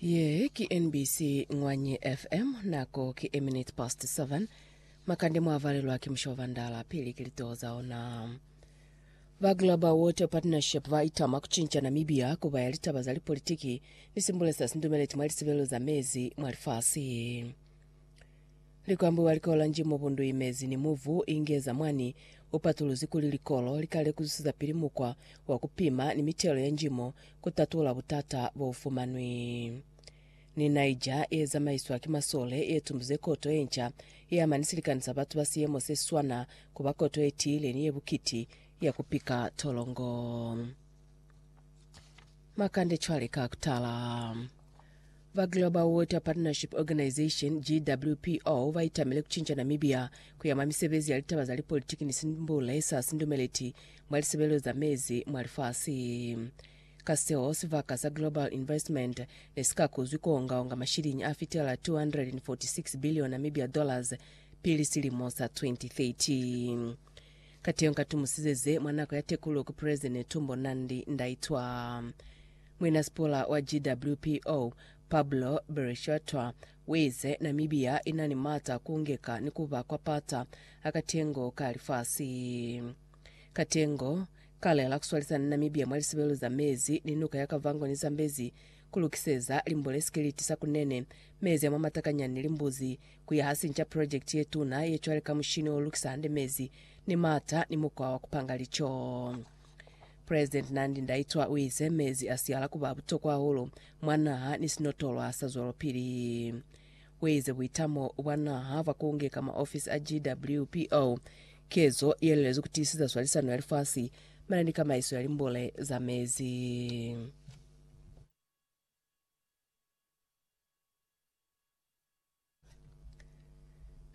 Ye ki NBC Ngwanyi FM, nako ki a minute past 7. Makande mwavalelwa ki musha wa Vandala, pili ki litoho za ona. Ba Global Water Partnership ba itama kucinca Namibia kuba ya litaba za lipolitiki ni simbulesa sindumeleti mwa lisebelo za mezi mwa lifasi. Likwambi wa likolanji mo bundu imezi ni mubu ingeza mwani upatuluzi kuli likolo lika lekuzusiza pili mukwa wa kupima ni mitelo ya njimo kutatula butata boufumanwi. Ni Niger yezamaiswa ki masole yetumbuze koto yenca yeama ni silikani sa batu ba siyemo seswana kuba koto yetiile ni yebukiti ya kupika tolongo. Makande cwale ka kutala. Ba Global Water Partnership Organisation, GWPO, ba itamile ku cinca Namibia ku ya mwa misebezi ya litaba za lipolitiki ni simbule sa sindumeleti mwa lisebelelo za mezi mwa lifasi. Ka seo, sibaka sa Global Investment ne si ka kuzwi ku onga-onga mashiliñi a fitela 246 billion Namibia dollars pili silimo sa 2030. Kateyo nkatumusize ze mwa nako ya tekululo ku President Netumbo Nandi-Ndaitwah. Muinasipula wa GWPO, Pablo Berishwetwa, uize Namibia inani maata ku ngeka ni kuba kwa pata a katengo ka lifasi. Katengo ka lela kuswalisana Namibia mwa lisebelo za mezi ni nuka ya Kavango ni Zambezi, kulukiseza limbole sikiliti sa Kunene, mezi a mwa matakanyani ni limbuzi, kuya ha sinca project yetuna ye cwale ka mushini olukisa hande mezi ni maata ni mukwa wa kupanga lico. President Nandi Ndaitwa uize mezi asiala kuba butokwa hahulu mwa naha ni sinotolwa sa zwelopili. Uize buitamo bwa naha bwa kunge ka maofisi a GWPO kezo yelelezi kutiiseza swalisano ya lifasi mane ni kamaiso ya limbule za mezi.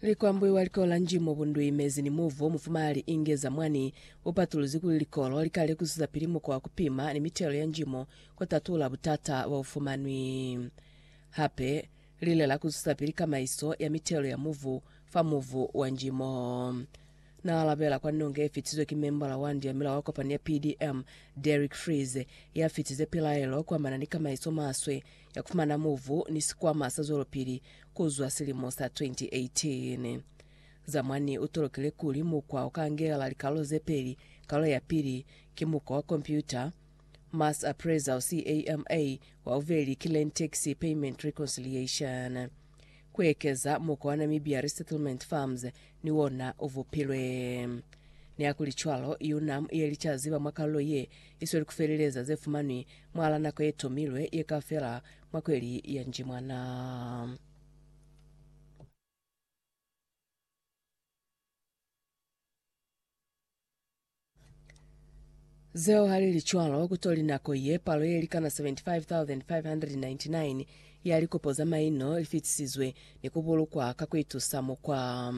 Likwambwi wa likolo la Njimo Bundwi Mezi ni Muvo Mufumalali Inge Zamwani upatuluzi kuli likolo likale kuzwezapili mukwa wa kupima ni mitelo ya njimo kutatula butata baufumanwi. Hape, lilela kuzwezapili kamaiso ya mitelo ya muvu fa muvu wa njimo. Na alabela kwa nonge ye fitiswe ki membala wa Ndiamila wa kopani ya PDM, Derrick Freeze, ya fitize pilaelo kuamana ni kamaiso maswe ya kufumana muvu ni sikwama sa zwelopili kuzwa silimo sa 2018. Zamwani u tolokile kuli mukwa o ka angelela likalolo ze peli, Kalolo ya pili ki mukwa wa kompyuta, Mass Appraisal, CAMA, wa bubeli ki Land Tax Payment Reconciliation. Ku ekeza mukwana mibi ya resettlement farms ni wona u vupilwe. Nihakulicwalo, UNAM ye lica ziba mwa kalulo ye i sweli ku feleleza ze fumanwi mwal'a nako ye tomilwe ye ka fela mwa kweli ya Njimwana. Zeo halili cwalo, kutoli nako ye palo yelikana 75,599 ya likopo za maino lifitisizwe ni kubulukwa ka kuitusa mukwa.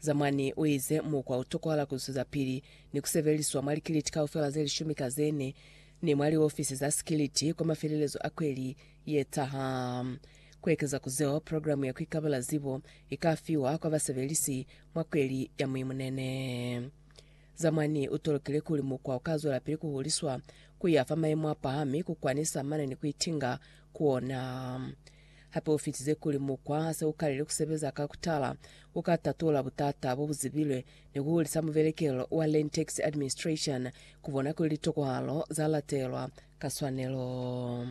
Zamwani uize mukwa utokohala kuzwezapili ni kusebeliswa mwa likiliti kaufela zelishumi ka zene ni mwa liofisi za sikiliti kwa mafelelezo a kweli yetaha. Kuekeza ku zeo, programe ya kuikabela zibo ikafiwa kwa basebelisi mwa kweli ya muimunene. Zamwani u tolokile kuli mukwa u ka zwelapili ku huliswa ku ya fa mayemo a pahami ku kwanisa mana ni ku itinga ku ona. Hape u fitize kuli mukwa ha se u kalile ku sebeza ka ku tala, u ka tatula butata bo bu zibilwe ni ku hulisa mubelekelelo wa Land Tax Administration ku bona kuli litokohalo za latelwa ka swanelo.